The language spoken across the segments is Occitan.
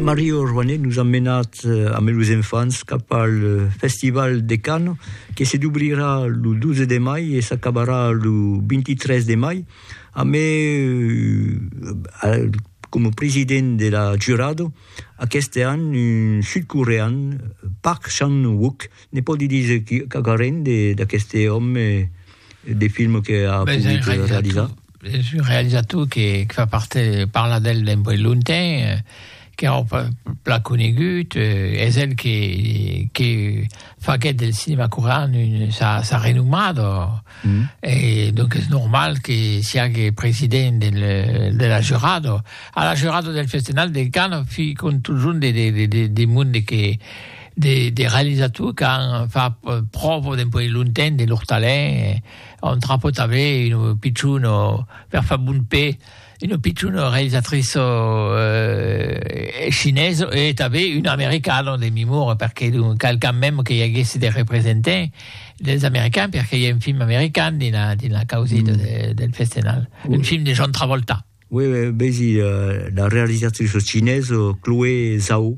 Mario Rouanet nos a menat amb los enfants cap al Festival de Cannes que se dubrirà lo 12 de mai e s'acabarà lo 23 de mai amb euh, coma president de la jurado aqueste an un sud-corean Park Chan-wook, ne pòdi díser quauquarren d'aqueste òme de film que a pogut realizar? Es un realizator que fa part de parlar d'el d'un boi lonten, qu'es ora plan conegut, es el que faguèt del cinema corean sa renomada, e donc es normal que siague president de la jurada. A la jurada del Festenal de Cannes fi contusion de monde que de realizator qu'an fach pròva d'un boi lonten de lor talent. On trapò tanben una pichona per far bon pè, una pichona realisatriça chinesa e tanben una americana de memòria, perqué donc cal quand même que i aguèsse de representant dels americans, perqué i a un film american dins la causeta del Festenal, un film de John Travolta. Uèi è bèsi la realisatriça cinesa Chloé Zhao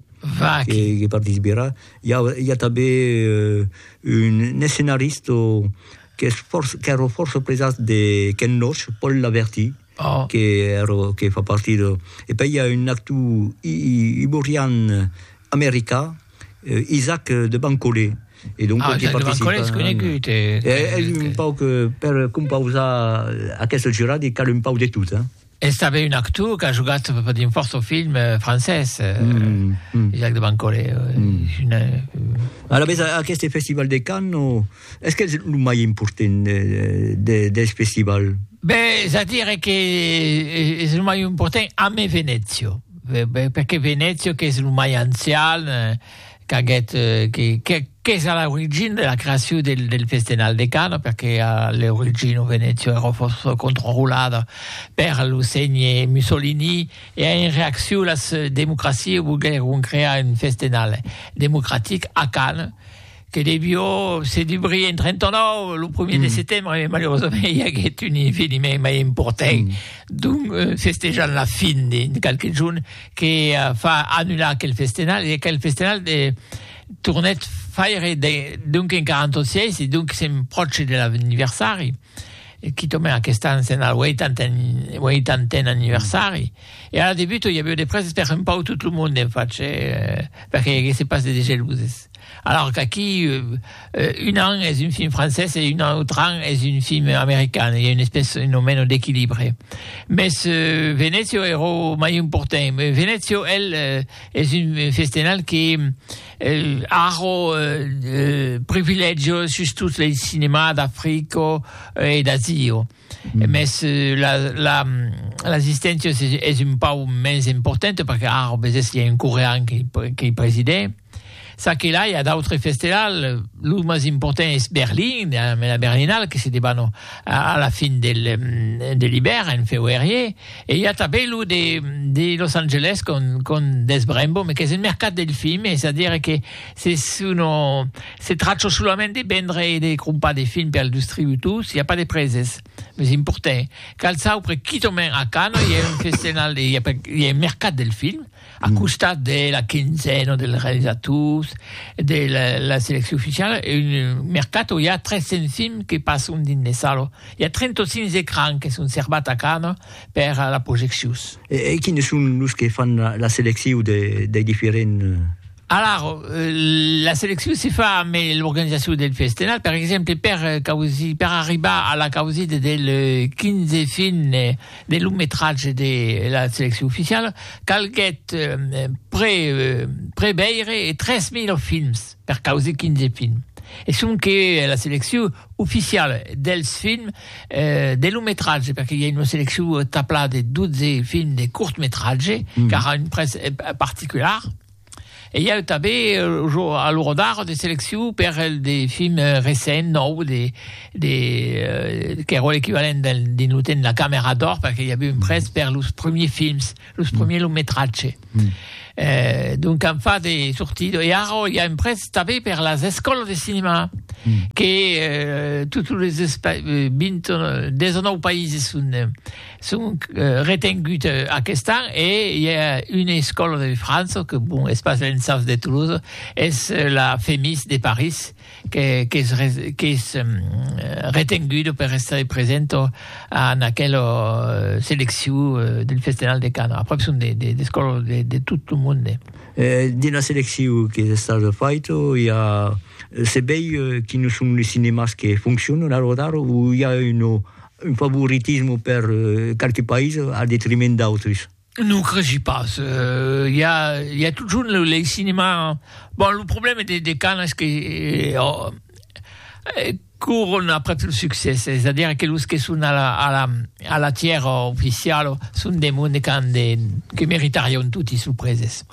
que participerà. I a, i a tanben un escenarista qu'es fòrça, qu'èra fòrça presat de Ken Loach, Paul Laverty, qu'èra, que fa partir de... E pèi i a un actor iborian americà, Isaac de Bancolé. E donc, ah, Isaac de Bancolé és conegut. E, e, és un pau que, per compausar aquesta jurada, hi cal un pau de tot, eh? És també un actor que ha jugat per un fòrça film eh, francès, eh, mm, mm. Isaac de Bancolé. Eh, mm. Una... Eh, Ara, aquest festival de Cannes, o... Es qu'es lo mai important deth festival? Bèh, a dire que es lo mai important amé Venezio, perque Venezio qu'es lo mai ancian, qu'aguèt, qu'es a l'origina de la creacion del festenal de Cana, perque a l'origina Venezio èra fòrça controlada per lo sénhe Mussolini e en reaccion las democracias volguèron crear un festenal democratic a Cana, que devió se dubrir en 39, lo 1 mm. de setembre, e malheureusament i aguèt un eveniment mai important, mm. d'un euh, festejant la fin de qualque junt que uh, fa annular aquel festenal, e aquel festenal de, tornèt faire de, donc en 46, e donc s'empròche de l'anniversari. quitament aquest an se'n al 80n anniversari, e ara de buta i aviu de prèses per un pauc tot lo monde en fach, perque i aguèsse pas de degeluses. Alòr qu'aquí un an es un film francés e un autre an es un film american, i a un espèce un o meno d'equilibre. Mès Venezio èra o mai important, Venezio, el, es un festenal que, Arro privilègio sus tot lei cinemà d'Africo e d'Azio. Mes la la l'assisténcia es es un pau mens importante perque arro besés i a un corean que que'i presidè. Ça que là i a d'autres festelal, lo mas important es Berlin, la Berlinale que se debanò a la fin del de l'ibèrn en feuerier. E i a tanben lo de de Los Angeles con con Des Brembo, me qu'es un mercat del film, es a dire que se sono se trachò solament de vendre e de crompar de film per distributors, i a pas de preses, mes importè. Qualsaupre quitament a Cannes i a un festival, i a un mercat del film. A costat de la quinzena dels realizators de la, la selecció oficiala, un mercato, i a 300 films que passon dins de salo. I a 35 ecrans que son servats a Cannes per la projeccius. E, e quines son los que fan la, la selecciu de, dei diferents Alara, la seleccion se fa ambe l'organizacion del festenat, per exemple per causir, per arribar a la causida del 15 fin de long metratge de la seleccion oficiala, calguèt pre, preveire 3000 films per causir 15 films. E sonque la seleccion oficiala dels films de long metratge, perque i a una seleccion taplada de 12 films de cort metratge, qu'ara un prètz particular. E i a eu tanben jo a lo rodar de seleccion per el de film recent nòu de de qu'èra l'equivalent del dins lo temps de la camera d'or perque i a eu un prèst per los premiers films, los premiers long metratge. Eh donc an fat de sortir e ara i a un prèst tanben per las escòlas de cinema que totes los 20 19 païses son Sonc retengut aquest an e i a una escòla de França, que bon, es pas l'ENSAF de Toulouse, es la FEMIS de París, qu'es retenguda per estar presenta en aquela seleccion del Festenal de Cana. Aprèp son d'escòlas de tot lo monde. Dins la seleccion qu'es estada faita, i a, se vei quines son los cinemas que foncionan a l'ora d'ara o i a una Un favoritisme per qualques païses al detriment d'autres? Non cregi pas, i a i a totjorn lo lei cinema, bon lo problème de de Cannes es que coron après lo succès, es a dire que los que son a la a la a la tièra oficiala son de monde qu'an de que meritarion toti sorpreses.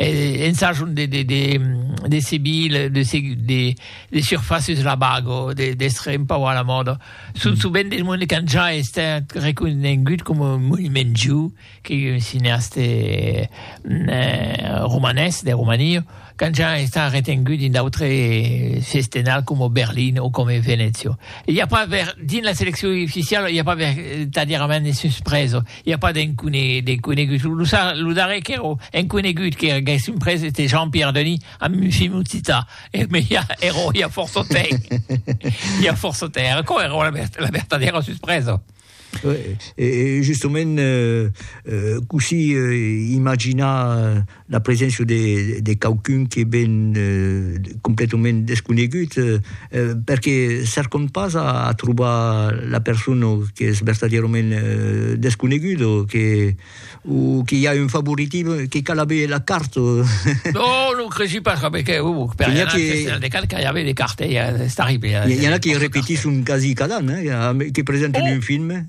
en sajon de de de de seguir de seguir de de surfaces la bago de d'estre un pau a la mòda son sovent de monde qu'an ja estat reconegut coma un monument ju que un cineaste romanés de Romania qu'an ja estat retengut dins d'autre sestenal coma Berlin o coma Venècia i a pas dins la seleccion oficiala i a pas vertadièrament de suspresa I a pas d'enconegut. Lo darrèr qu'èra enconegut qu'èra gaissent pres ète Jean-Pierre Denis amb un film occitan. Mès i a ero i a fòrça temps. I a fòrça temps. Era aquò ero la vertadèra suspresa. E justement cossí imaginar la preséncia de, de quauqu'un que ven completament desconegut, perque cercom pas a, a trobar la persona qu'es vertadièrament desconeguda, que, o que i a un favoritisme, que cal aver la carte. Non, non cresi pas, coma que, uh, per N'hi a anar al que- Festival de Cannes, cal aver de carte, eh, es terrible. N'hi a qui repetisson quasi cada an, eh, que presentan un film.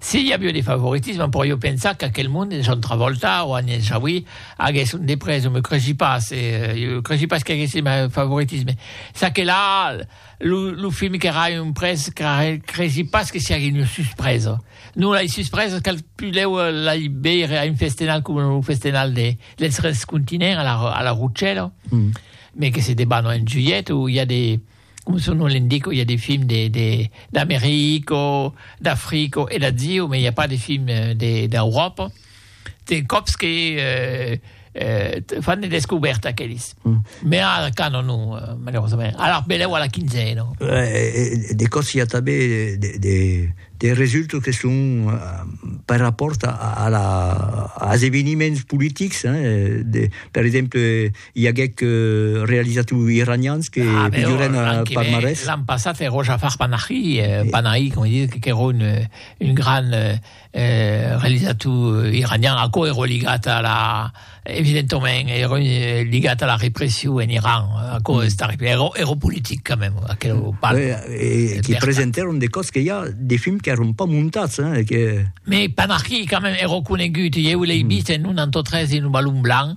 Si i avió de favoritisme, però jo pensar qu'aquel monde de John Travolta o Agnès Jaoui aguèsse un deprès, o me creshi pas, jo creshi pas qu'aguèsse mai favoritisme. Ça que la, lo, lo film qu'èra un près, creshi pas que siagui una suspresa. Non, lai suspresas cal pulèu lai veire a un festenal coma lo festenal de, dels Tres Continents a la, a la Rocella, me que se debanò en julhet o i a de, Coma son nom l'indica, i a de films d'America, d'Africa e d'Azia, mas i a pas de films d'Euròpa. De còps que fan de descobèrtas aquelis, mas ara cana non, malerosament. Alara belèu a la quinzena. De còps i a tanben de resultats que son per rapòrt als eveniments politics, per exemple, I aguec realizat ui iranians que piduren a Parmarès. L'an passat èro Jafar Panahi, Panahi, com dit, qu'èro un gran realizator iranian, aquò èro ligat a la, evidentament, èro ligat a la repression en Iran, aquò es terrible, èro, èro politic quand même, aquerò pas. E que presentèron de còps que i a de films qu'èron pas montats, hein, que. Mais Panahi quand même èro conegut, ieu l'ei vist en un antotrès dins lo Balon Blanc,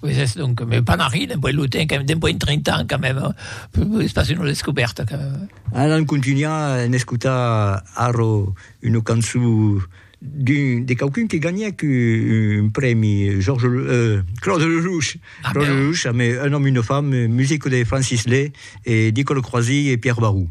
Pues es donc me pas marri dempuèi lo temps que dempuèi un 30 ans quand même es pas una descobèrta quand même. Alan contunha en escotar arro una cançon d'un de quauqu'un que ganhèc un prèmi Georges euh Claude Lelouch Claude Lelouch amé Un homme une femme musique de Francis Lay e Nicole Croisille e Pierre Barou.